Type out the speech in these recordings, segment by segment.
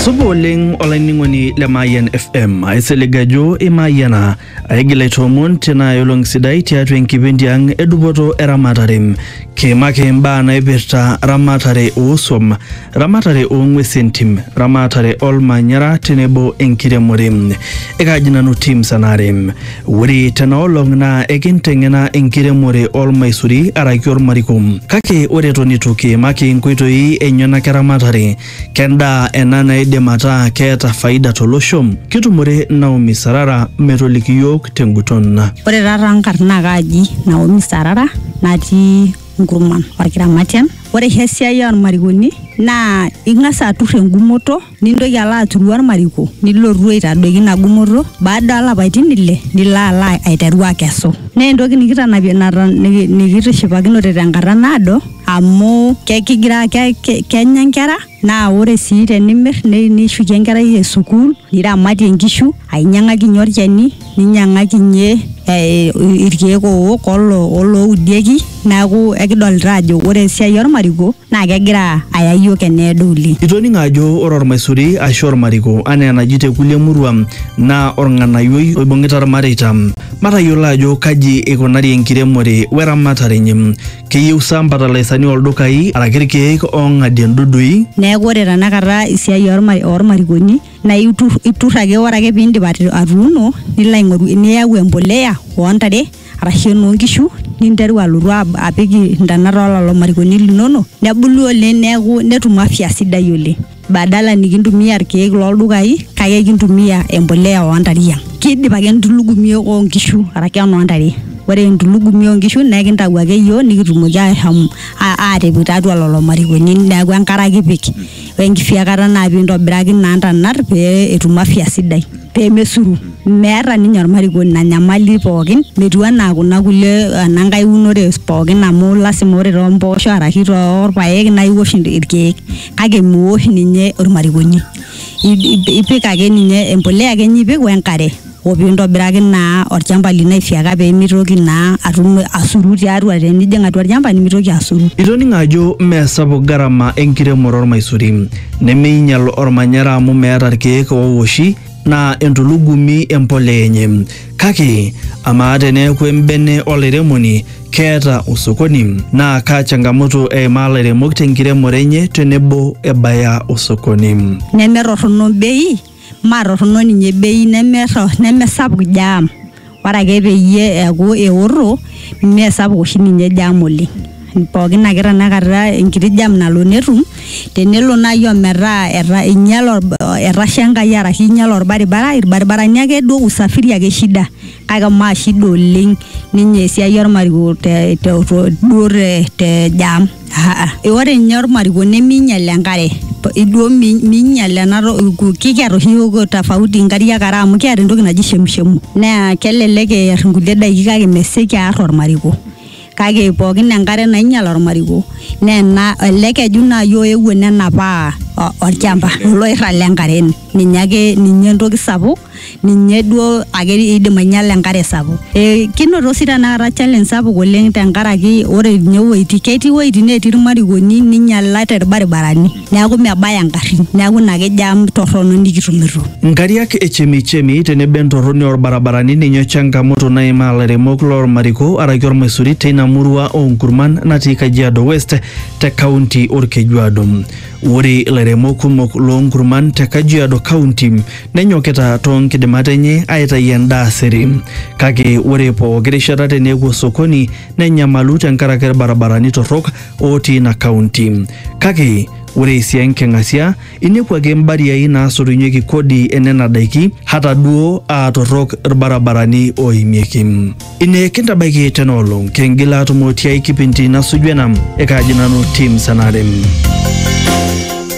supa oleng olainining'oni le mayian fm aisilig ajo imayiana aigil aitoomon tena olong sidai tiatua enkipindi ang edupoto eramatare kiimaki imbaa naipirta ramatare oosuam ramatare oong'uesi entim ramatare olmanyara tenebo enkiremore ekaaji nanu tim sanare Ore tena olong naa ekinteng'ena enkiremore olmaisuri araki olmariko. Kake ore eton eitu kiimaki nkoitoi enyenak eramatare, kendaa ena naidim ataa keeta faida tolosho? Kitumore Naomi Sarara metoliki iyiook tenguton. Ore taa taa nkarn naa kaaji Naomi Sarara natii Nkurman, Olkiramatian. Ore oshi esiai olmarikoni naa ing'as atur engumoto. nintoki alo aturu ormariko nilotu aitadoiki ina gumoto baada olapaitin ile nilo alo aiteru akesu naa entoki nikitanapie nata- niki- nikitishipakinote tenkata naado amu ke- kigira ke- ke- kenya nkera naa ore sii tenimir ni- nishukie enkerai e sukuul niramatie nkishu ainyiang'akinyie olchani ninyiang'aki ninye eh, irkeek owok olo oloudieki neaku ekidolita ajo ore esiai ormariko naa kegira aya iyiook eneedo oleng. Itoning'o ajo ore ormaisuri aashu ormariko anaa enaji te kulie murua naa orng'anayioi oibung'ita irmareita. Matayiolo ajo kaji eikunari enkiremore we ramatare enye. Keyieu sa mbatalaisani oo ldukai araki irkeek oong'adie ndudui? Neaku ore tenakata esiai orma ormarikoni na itur, itur ake ore ake pindip atuuno nilo aingoru niyau embolea ontare arashu enonkishu ninteru alotu apik ntonat ololo marikoni linono nebulu oleng neaku netum afya sidai oleng badala nikintumia irkiek loldukai kake ekintumia embolea ontare yiang kidip ake entulugumi onkishu arashu enontare ore entulugumi onkishu na ekintau ake yiok nikitumoki ashom atipik tiatua lolo marikoni neaku enkare ake ipik. wenkisiakata naa pintobiraki naa ntanat pee etum afya sidai pemesuru meeta ninye ormarikoni ina nyamali pookin metiu anaa kuna kulie enankae unore pookin amu lasima ore tompoosho arashu torpayek naa iwosh inti- irkeek kake miwosh ninye ormarikoni I- ipik ake ninye empulia ake inye ipik wenkare. o pee intobiraki naa olchamba lino aifyeka pee mitoki naa atum asuru tiatua tenijing atua olchamba nimitoki asuru. Itoning'o ajo mme sapuk garama enkiremore olmaisuri, nemeinyal olmanyara amu meeta ilkeek oowoshi naa entulugumi empolea enye. Kake amaa teneeku embene olairemoni keeta osokoni naa kaa changamoto eimaa lairemok tenkiremore enye tenebo ebaya osokoni. Nemetorrono bei. maatorrono ninye bei nemerro nemesapuk jam ore ake peyie eeku eorro meesapuk oshi ninye jam oleng pookin ake tanakata enkiti jam nalo netum tenelo naaji ometaa eta einyiale orba etasha enkai arashu einyiale orbaribara irbaribarani akeduo usafiri ake shida. kake maa shida oleng ninye esiai ormariko te, te, to- duo te, te jam Aa, ore ninye ormariko neminyal enkare P- iduo mi- minyal ena to- ku- kikiata oshi yiok tofauti inkariak are amu kiata entoki naji shemushemu naa kelelek eer inkulie daiki kake mesioki aar ormariko kake pookin enkare nainyal ormariko neena ele keju naaji oewuo nenapaa o- olchamba oloirrag lenkare ninye ake ninye entoki sapuk ninye duo ake idim ainyiala enkare sapuk e, kinoto sii tenakata challenge sapuk oleng tenkaraki ore ninye iwuejitin ketii iwuejitin netii irmarikoni ninyialate irbaribarani. neaku mebaya ingarrin neaku ina ake jam torrono nikitumito. Nkariak e chemichemi tenebo entorroni oo lbarabarani ninye changamoto naimaa lairemok loo lmariko araki olmaisuri teina murua oo nkurman natii Kajiado West te kaunti Olkejuado. Ore lairemok kumok loo nkurman te Kajiado County nenyokita too nkidimat enye aitayu endaa sere. Kake ore pooki rishata tenepuo sokoni nenyamalu tenkaraki ilbarabarani torrok otii ina kaunti. Kake ore esia enking'asia, inepu ake mbariai naasotunyeki kodi enena daiki hata duo aa torrok ilbarabarani ooimieki. Ine kintabaiki tena olong, kingil aatumo tiai kipindi nasuju ena. Ekaaji nanu Tim Sanare.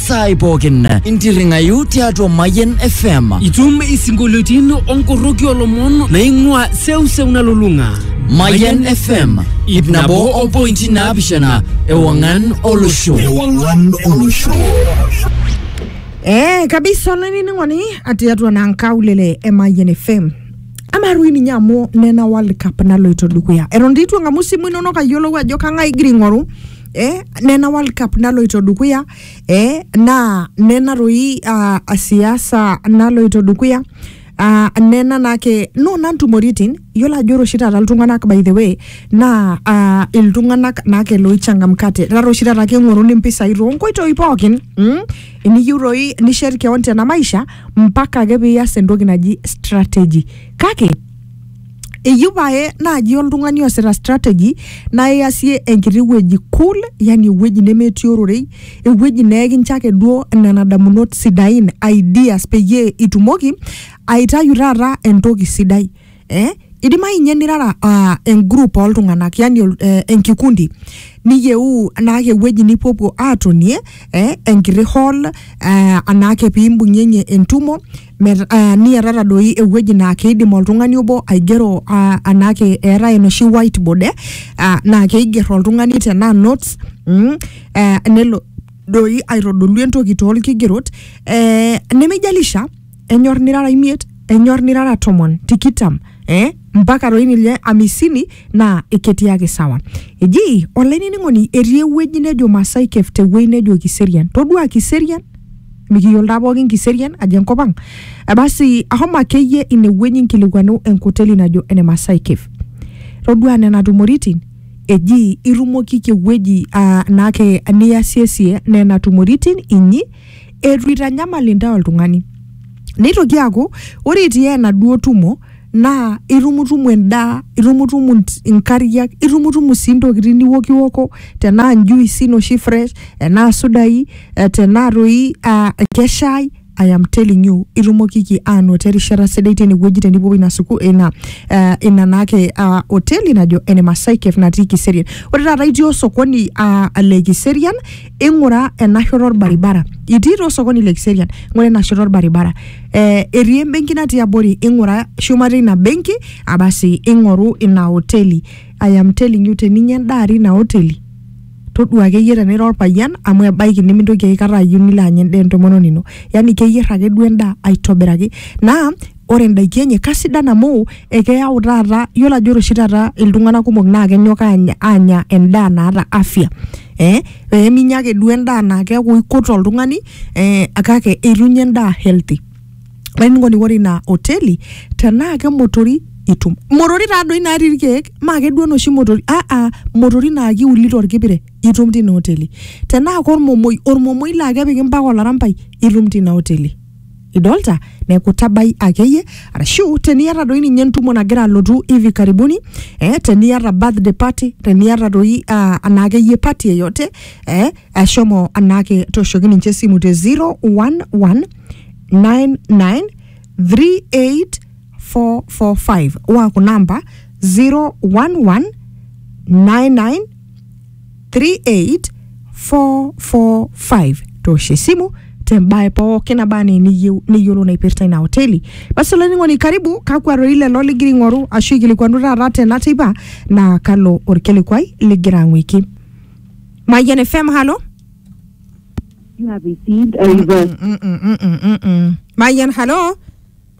saai pookin intirring'ayu tiatua Mayian FM. Itum isinkolioitin onkoroki olomon naing'ua seuseu nalulung'a. Mayian FM ip nabo o pointi naapishana ewang'an olosho. Ewang'an olosho. Eh, kabisa olainining'oni atiatua naa nkaulele e Mayian FM. Ama rui ninye amu nena World Cup naloito dukuya. Eton dii itu eng'amu simu inonok ayiolou ajo kang'ae igira aing'oru eh, nena World Cup naloito dukuya eh, naa nena toi uh, siasa naloito dukuya Uh, nena naake nona ntumoritin yiolo ajo ore oshi taata iltung'anak by the way naa uh, iltung'anak naake loichangamkate taata oshi taata keng'oruni impisai toonkoitoi pookin mm? eniyieu toi nishet keon tena maisha mpaka ake piiyas entoki naji strategy kake eyieu pae naaji oltung'ani oosita strategy naa iasie enkiti wueji cool yani ewueji nemetii ororei ewueji neekincho ake duo nena damunot sidain ideas peyie itumoki aitayu taata entoki sidai eh? idimayu inye nirara uh, engroup oltung'anak yani ol- eh, enkikundi niyieu anaake ewueji nipuopuo atonie eh, enkiti hall eh, anaake pimbung'ieng'ie entumo Met, uh, niatata doi ewueji naa keidim oltung'ani obo aigero uh, anaake eetae enoshi whiteboard eh, uh, naa keiger oltung'ani tenaa notes mm, eh, nelo doi aitodolu entoki toolkigerot eh, nemejalisha enyor nirara imiet enyor nirara tomon tikitam eh, mpaka doi ninye amisini naa ketii ake sawa eji olainining'oni etii ewueji nejo Masai Cave tewueji nejo Kiserian todua Kiserian mikiyiolo taa pookin Kiserian ajo enkop ang Eh, basi ahomo akeyie inewueji nkilikuanu enkoteli najo ene Masai Cave todua nena tumoritin eji irumokiki ewueji ah, naake niyasiesie nena tumoritin inyi eitu eitanyamal intae oltung'ani neitoki aaku ore itii enaduo tumo naa itumutumu endaa itumutumu int- inkariak itumutumu sii intokitin niwokiwoko tenaa njuisi noshi fresh enaa sudai eh, tenaa toi ah, keshai I am telling you itumokiki aanoto erishata sidai tinewueji tenipuopuo ina suku ina eh, ina naake ah, hoteli najo ene Masai Cafe natii Kiserian ore taata itii osokoni ah, le Kiserian ing'ura ena shoto orbaribara itii taa osokoni le kiserian ing'ura ena shoto orbaribara eh, etii embenki natii abori ing'ura shumata ina benki abasi ing'oru ina hoteli I am telling you teninya endaa atii ina hoteli todua akeyie tenira orpayian amu ebaiki nimintoki aikata ayieu nilo anya endaa entomononi ino yani keyier ake duo endaa aitobiraki naa ore indaiki enye kasidan amu ekeyau taata yiolo ajo ore oshi taata iltung'anak kumok naa kenyok aanya, aanya endaa naata afya eh, peminya ake duo endaa naa keeku ikut oltung'ani eh, kake eitunye endaa healthy olainining'oni ore ina hoteli tenaa kemotori itum motori taadoi natii irkeek maa keduo noshi motori aa motori naa kiuli torkipire itum tina hoteli tenaa kormomoi ormomoi laa kepiki mpaka olarampai itum tina hoteli idolta neeku tabai akeyie arashu teniata doi ninye entumo nagira alotu hivi karibuni eh, teniata birthday party teniata doi uh, anaa akeyie party yeyote eh, ashomo anaake toshoki ninche esimu te 011 99 38445 waa kuna amba 011 99 three eight four four five toshe simu tembae pookin aba anaa eniyieu niyiolou naipirta ina hoteli basi olainining'oni karibu kakwa rorei lelo ligira aing'oru ashu ikilikuanu taata tena teipa naa kalo orkilikuai ligira ang'uiki Mayian FM halo You have received a reverse. Mm, mm, mm, mm, mm, mm. Mayian halo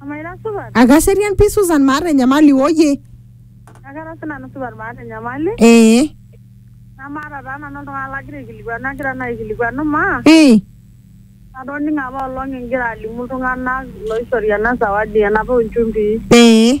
Amaa ira supat? Akaserian pii Susan maata enyamali woyie. Akara sii nanu supat maata enyamali. Ee. Namaata taa nanu oltung'ani lagira aikilikuanu agira naa aikilikuanu maa. Ee. Atoning'o apa olong igira alimu iltung'anak looishori ena sawadi enapa oo nchumbii. Ee.